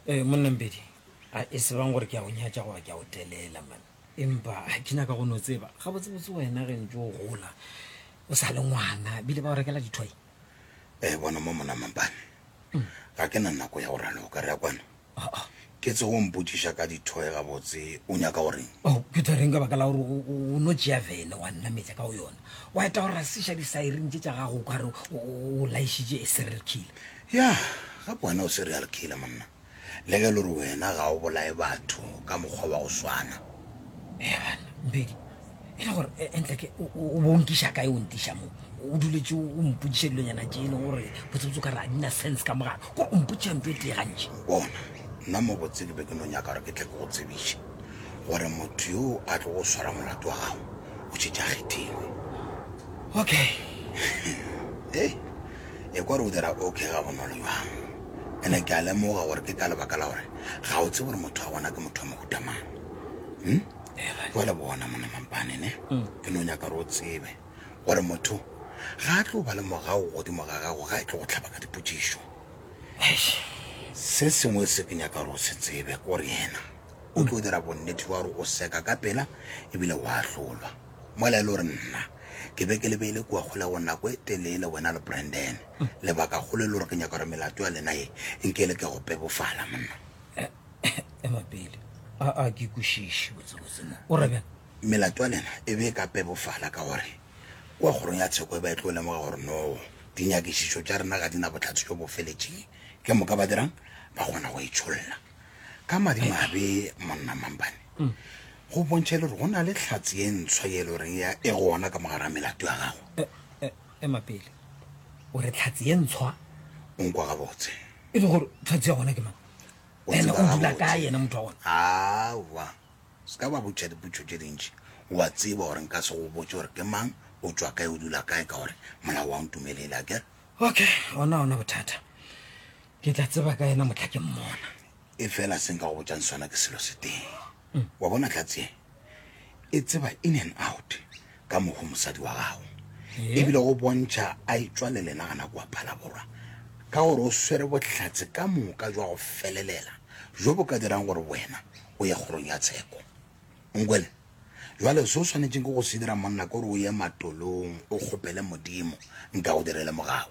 ee eh, monnambedi a e sebang gore ke a go nyatša goba ke a go telela man empa ga ke nyaka go no tseba ga botsebotse wena ge ntse o gola o sa le ngwana bile ba go rekela dithoy ee eh, bona mo mona mampane mm. ga ke na nako ya go raloka re ya kwano Aa. Ke tsego o mpotšiša ka dithoe gabotse, o nyaka go reng? O phetha reng ka baka la gore o, o, o no tšea vene wa nnametša ka go yona? Wa eta go rasiša disairini tše tša gago o ka re o, o, o laišitše a serial killer? Ya, gape wena o serial killer, monna. Le ge e le gore wena ga o bolaye batho ka mokgwa wa go swana. Eya bana, Mpedi, e le gore e, e ntle ke o bo nkiša kae o ntiša mo o duletse o mpotsiša dilonyana tse e leng gore botsebotse ka re a dina sense ka mogala kore o mpotsiša nto e tee gantši bona nna mo botse ke be ke no nyaka gore ke tle ke go tsebiše gore motho yo a tlo go swara molato wa gago o tšhetša kgethilwe okay e e kwa re o dira okay ga bonolo jwang ene ke a lemoga gore ke ka lebaka la gore ga o tse gore motho wa bona ke motho wa mohutamang hmm? jale bona mona mampane ne mm. ke no nyaka re o tsebe gore motho ga a tlo ba le morago godimo ga gago ga e tlo go tlhaba ka dipotsišo se sengwe se ke nyaka gore o se tsebe kore yena o tlo dira bonnete jwa gore o seka ka pela ebile o a tlolwa mola e le gore nna ke be ke lebeile kua kgole go nako e telele wena le branden mm. lebaka kgolo e le gore ke nyaka gore melato ya lena e nkele ke go pebofala monna ema pele a ke kwešiše o re bjang melato ya lena e be e ka pebofala ka gore kwa kgorong ya tsheko e ba e tlo lemoga gore no dinyakišišo tša rena ga di na botlhatsi jo bo feletšeng ke moka ba dirang ba kgona go e tsholla ka madimabe monna mampane mm. go bontšha e le gore go na le tlhatsi e ntshwa ye e le goreng ya e gona ka mogara melato ya gago e, e, ema pele o re tlhatsi e ntshwa o nkwa gabotse e le gore tlhatsi ya gona ke mang o ene tseba o dula gabotse. kae ene motho wa gona aowa se ka ba botšha dipotšo tše dintši wa tseba gore nka se go botse gore ke mang o tswa kae o dula kae ka gore molao wa ntumelele a kere okay ona ona bothata ke tla tseba ka ena motlha ke mmona e fela se nka go botšang sona ke selo se teng Wa bona tlats ye e tseba in and out ka mogo mosadi wa gago ebile go bontšha a etswa le lena gana kua phalaborwa ka gore o swere bohlatse ka moka jwa go felelela jo bo ka dirang gore wena o ye kgorong ya tsheko nkwele jwale se o swanetseng ke go se dira monna kore o ye matolong o kgopele modimo nka go direle mogago